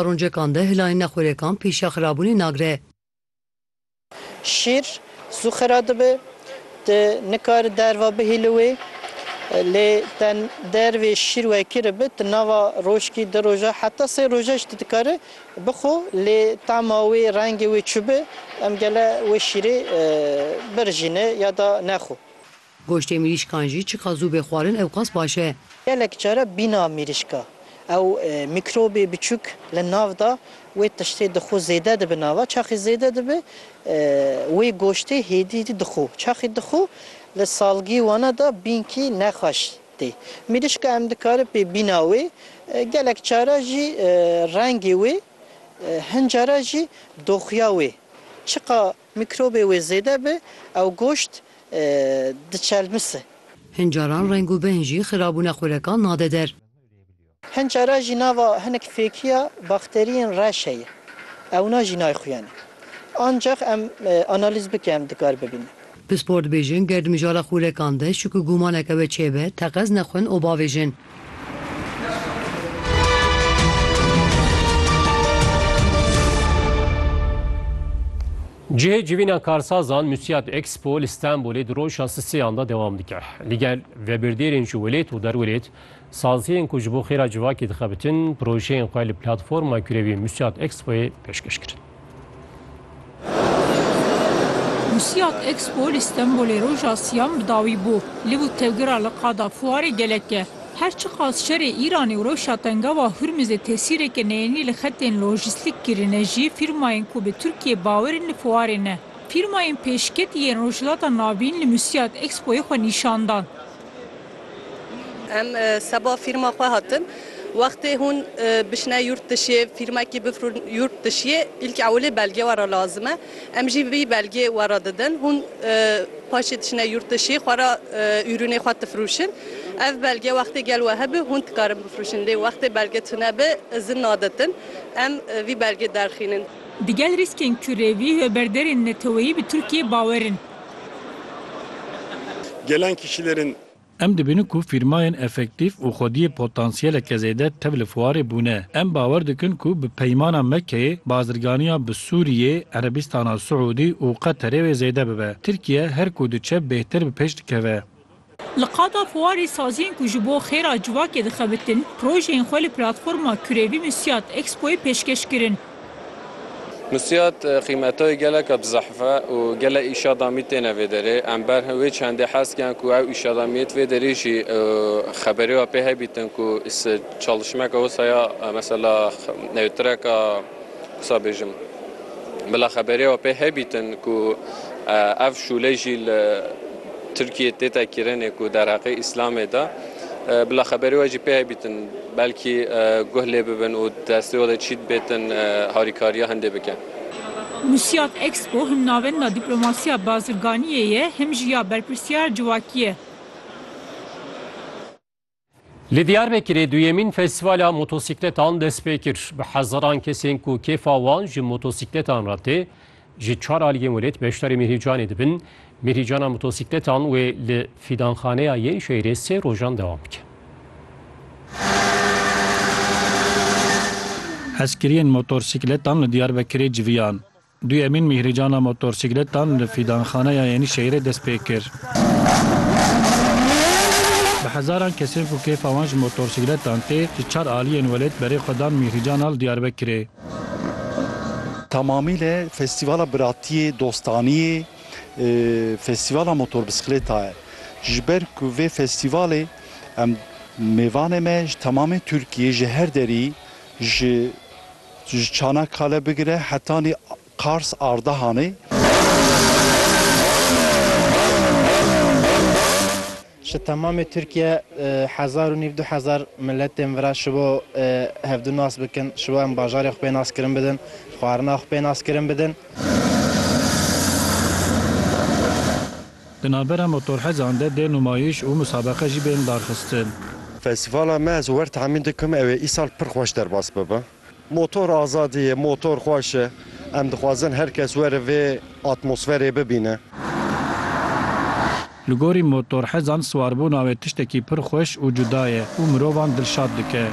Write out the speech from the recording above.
Roncekan de hilayên nexwerekan pêşiya xirabûnê nagre. Şîr zû xira dibe, tu nikare derva bihîli wê. Lê te dervê şîr wekî re be, tu nava rojkî, du roja heta sê roja jî tu dikare bixwe. Lê tama wê, rengê wê çi be, em gele wê şîrê birijîne ya da nexwe. Goştê mirîşkan jî çiqas zû bê xwarin ewqas baş e. Gelek care bîna mirîşka ew mîkrobê biçûk li nav da, wê tiştê dixwe zêde dibe nava, çaxê zêde dibe wê goştê hêdî jî dixwe, çaxê dixwe li salgî wana da bînkî nexweş tê. Mirîşka em dikare pê bîna wê, gelek cara jî rengê wê hin cara jî doxuya wê çiqa Mîkrobê wê zêde bi ew goşt diçelmisi. Hin caran reng û bêhn jî xirabûna xurekan nade der. Hin caran jî nava hinek fêkiya bakteriyên reş heye ewna jî nayxuyane. Ancax em analîz bike em dikar bibîne. Pispor dibêjin ger di mijara xurekan de şik û gûmaneke we çêbe teqez nexwin û bavêjin. Cihê civîna karsazan Musyat Expo li Stenbolê di roja siseyan de dewam dike. Li gel vebirdêrên ji welêt û derwelêt, saziyên ku ji bo xêra civakê dixebitin, projeyên xwe li platforma kurevî Musyat Expoyê pêşkeş kirin. Musiyat Expo li Stenbolê roja siyan bi dawî bû. Liv û tevgira li qada fuarê gelek e. Her çiqas şerê Îranê û rewşa tengawa Hurmizê tesîreke neyênî li xetên lojîstîk kirine jî fîrmayên ku bi Tirkiyeyê bawer in li fuarê ne. Fîrmayên pêşketî yên Rojhilata Navîn li Musiyat Expoyê xwe nîşan dan. Em seba fîrma xwe hatin. Wextê hûn bişne yurt dişê fîrmekî bifrûn yurt dişiyê îlk ewilê belgê we re lazim e. Em jî vî belgê we re didin. Hûn paşê diçine yurt dişê xwe re ürûnê xwe difrûşin. Ev belge wextê gel we hebi hûn dikarin bifrûşin. Lê wextê belge tune bi izin naditin. Em vî belgê derxînin. Digel rîskên ku rê vî hewberderên neteweyî bi Tirkiyeyê bawer in. Gelen kişilerin. Em dibînin ku fîrmayên efektîf û xwediyê potansiyeleke zêde tev li fuarê bûne. Em bawer dikin ku bi peymana Mekkeyê bazirganiya bi Sûriyê, Erebîstana Siûdî û Qeterê wê zêde bibe. Tirkiye her ku diçe bêhtir bi pêş dikeve. Li qada xwarê saziyên ku ji bo xêra civakê dixebitin, projeyên xwe li platforma Kurevî Misyat Expoyê pêşkeş kirin. Misyat qîmetayê geleka bi zehf e û gelek îşadamî têne vê derê. Em ber wê çendê hez kiyan ku ew îşadamiyê di vê derê jî xeberê we pê hebîtin ku çalişmeke wisa ya mesela treka wisa bêjim bila xeberê we pê hebîtin ku ev şûlê jî li Tirkiyê tê te kirinê ku derheqê Îslamê de bila xeberê we jî pê hebîtin belkî guh lê bibin û destê we de çî dibêtin harîkariya hindê bikin. Wusiyat Expo him navenda dîplomasiya bazirganiyê ye him jî ya berpirsiyar civakî ye. Li Diyarbekirê duyemîn festîvala motosîkletan dest pê kir. Bi hezaran kesên ku kêfa wan ji motosîkletan re tê, ji çar aliyên welêt beşdarî Mîrhîcanê dibin. Mîrhîcana motosîkletan wê li Fîdanxaneya yên şehîrê sê rojan dewam bike. Hezkiriyên motorsîkletan li Diyarbekirê civiyan. Duyemîn mîhrîcana motorsîkletan li Fîdanxaneya Yenîşehîrê dest pê kir. Bi hezaran kesên ku kêfa wan ji motorsîkletan tê, ji çar aliyên welêt berê xwe dan mîhrîcana li Diyarbekirê. Tamamîle festîvala biratiyê, dostaniyê, festîvala motorbisikleta ye. Ji ber ku vê festîvalê em mêvanê me ji tamamê Tirkiyê ji her derî ji Ji Çanakkale bigire hetanî Kars, Ardahanê, Ji temamê Tirkiye hezar û nîv du hezar miletên vira ji bo hevdu nas bikin, ji bo em bajarê xwe pê naskirin bidin, xwarina xwe pê naskirin bidin. Di navbera motorhezan de dê numayîş û musabeqe jî bên darxistin. Festîvala me ez wer temîn dikim ew ê îsal pir xweş derbas bibe. Motor azadî ye, motor xweş e. Em dixwazin her kes were vê atmosferê bibîne. Li gorî motorhezan siwarbûna wê tiştekî pir xweş û cuda ye û mirovan dilşad dike.